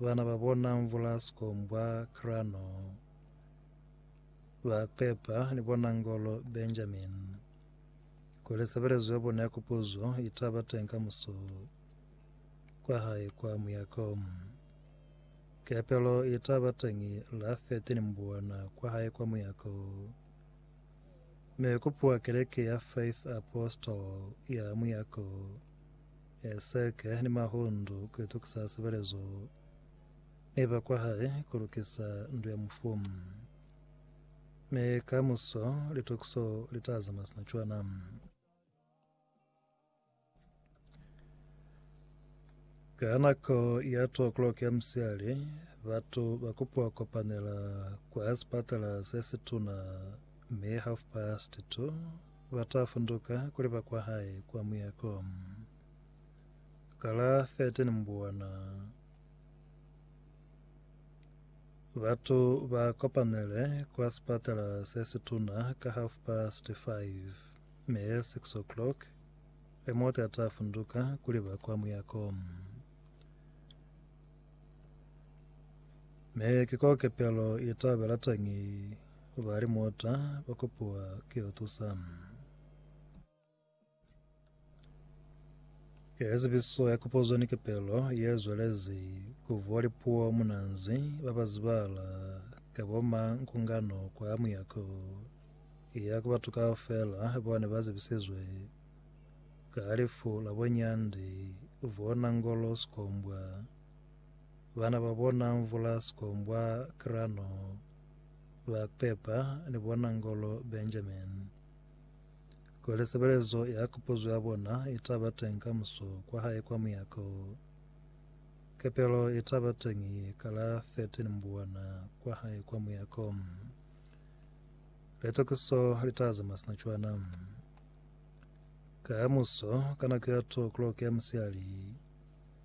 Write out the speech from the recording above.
bana ba bona Mvula Sikombwa Krano ba pepa ni bona Ngolo Benjamin kuli sebelezo ya bona ya kupuzo itaba teng ka muso kwa hae kwa muyako. Kepelo itaba teng la 13 Mbuana kwa hae kwa muyako me kupua keleke ya Faith Apostle ya muyako Eseke ni Mahundu ku itukisa sebelezo ni ba kwa hae ku lukisa ndu ya mufu. Mi kamuso litukiso li ta zama sina cwana. Ka nako ya 2 o'clock ya musiali, batu ba kupiwa kopanela kwa sipatala se situna mi half past 2 Ba ta funduka kuli ba kwa hae kwa muyako. Ka la 13 Mbuwana, batu ba kopanele kwa sipatala se situna ka half past 5 mi 6 o'clock Remote a ta funduka kuli ba kwa muyako. Me ki ko kepelo i ta ba latangi u ba li mota ba kopuwa ki u tusa. Ke zibiso ya kopozo ni kepelo ye zwelezi ku vuwa lipuo munanzi ba ba zibala ka bo mankungano kwa muyako ya ku batu kaufela bona ba zibisizwe Ka halifu la bunyandi bona ngolo sikombwa, bana ba bona mvula sikombwa krano, ba pepa ni bona ngolo Benjamin. Kuli sebelezo ya kupuzo ya bona itaba teñi ka muso kwa hae kwa muyako, kepelo itaba teñi ka la 13 Mbuwana kwa hae kwa muyako. Litokiso litaza masina cwana. Kamuso, ka nako ya 2 o'clock ya musihali,